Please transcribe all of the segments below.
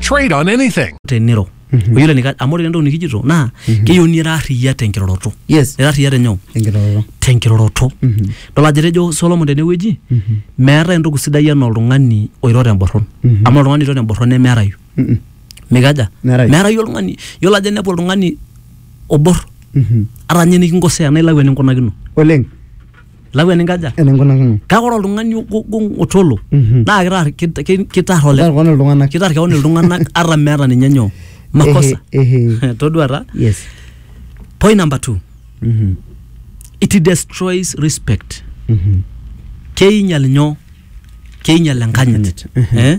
Trade on anything. teniro oyiolo enika amu ore entoki nikijito naa keyieu nira arriyia tenkiroroto Yes. ira arriyia tenyoo Enkiroroto. tenkiroroto dol ajo etejo solomon tenewueji meetae entoki sidai enaa oltung'ani oiro temborron amu ore oltung'ani oiro temborron nemeerayu Mm-mm. mikaja Meerayu. meerayu oltung'ani yiolo ajo inepu oltung'ani obor Mhm. ata ninye nikinkosea naa ilau eninkunakino Oleng. lau eninkaja eninkunakino kake ore oltung'ani ogong otolo Mhm. naa kitar kit- ki- kitar ole Kitar keon iltung'anak. kitar keon iltung'anak ata meeta ninye nyoo makosa Ehe, ehe. todua taa yes point number two Mhm, it destroys respect mhm. keinyal nyoo keinyal enkanyit Enkanyit, ehe. eh?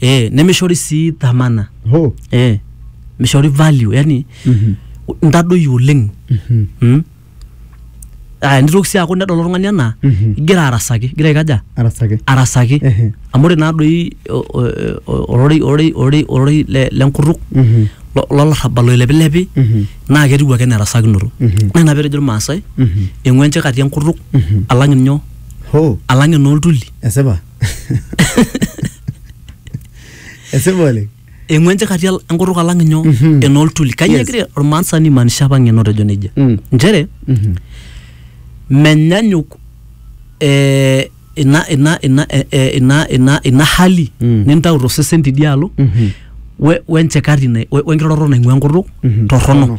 eh, nemishori sii dhamana Ho. eh, mishori value yani Mhm. ntadoyio oleng Mhm. mm? ah, nitoki sii aaku nedol oltung'ani anaa Mhm. igira arasaki igira aikaja Arasaki. arasaki Ehe. amu ore naadoi o- o- o- ororei ororei ororei ororei le- lenkutuk Mhm. lo- lolarrabal oilepilepi Mhm. naa ketiu ake nerasakinoto Mhm. naa ina petejo irmaasai Mhm. eng'uenche kati enkutuk Mhm. alang inyoo Ho. alang enooltuli Esipa. esipa oleng eng'uan chakati al- enkutuk alang inyo Mhm. enooltuli kanyio Yes. egira ormaasani maanisha apa ng'eno tejo nejia Mm. nchere Mhm. menyanyuk eh, ina ina ina eh, eh, ina ina ina hali Mm. nintau tosesen tidialo Mhm. we- wenchekati na- we- wenkiroroto naing'ua enkutuk Mhm. torrono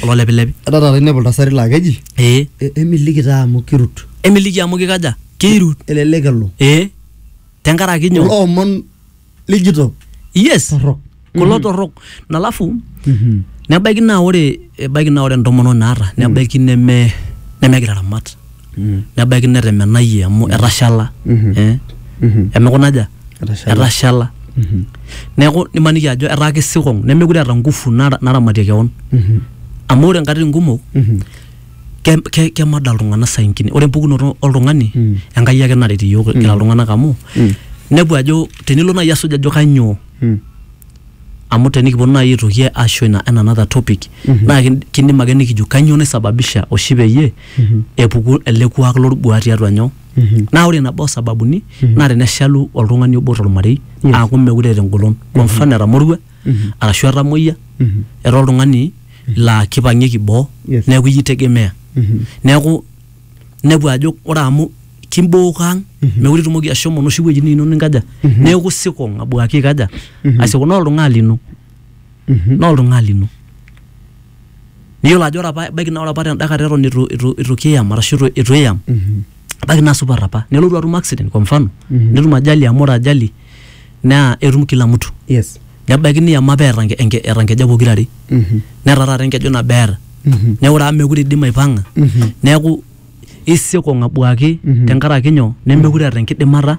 kulo lepilepi Etaa taata inepu iltasati laa keji ee "E- emiliki taa amu kirut. emiliki amu kikaja keirut Elelek elo. ee tenkaraki Kulo nyoo omon lijito yes torrok. kulo torrok nalafu Mhm. nebaiki naa ore ebaiki naa ore entomononi naata nebaiki neme nemegira aramat nebaiki netemenayie amu etashala eh, emekuna aja Etashala. etashala neeku nimaniki ajo etaa kisikong nemekure eeta ngufu nara- naramatie kewon amu ore nkatitin kumok ke- ke- kemada iltung'anak saingine ore empukunoto oltung'ani enkai ake naret iyiok kira iltung'anak amu nepu ajo tenilo naaji asuj ajo kanyoo amu tenikiponu naaji aitoki asho ina en another topic naa kin- kindim ake nikijo kanyoo naisababisha oshi peyie epuku ele kuak lolbuaa tiatua nyoo naa ore nabo osababuni naa teneshalu oltung'ani obo tormarei Yes. aaku mekure eeta engolon kwa mfano etamorua arashu etamoyia etaa oltung'ani laa kipang'ieki boo Yes. neeku iyie itegemea neeku inepu ajo ore amu kimbook ang mekure itumoki ashomo inoshi wuejitin inono ninkaja neeku sikong abuaki aikaja asikong naa oltung'ani lino naa oltung'ani lino niyiolo ajo ore apa ebaiki naa ore apa tenda kata eton itu, itu, itu kiyam arashu itu, itu iyam ebaiki naa supat apa nelotu atum accident kwa mfano netum ajali amu ore ajali naa etum kila mtu yes nebaiki niyam apa eeta enke- enke- eeta nkejek pokira are netaa taata enkeju nabo eeta neeku ore amu mekure idim aipang'a neeku isiokong abuaki tenkaraki nyoo nemekure eeta enkidimata.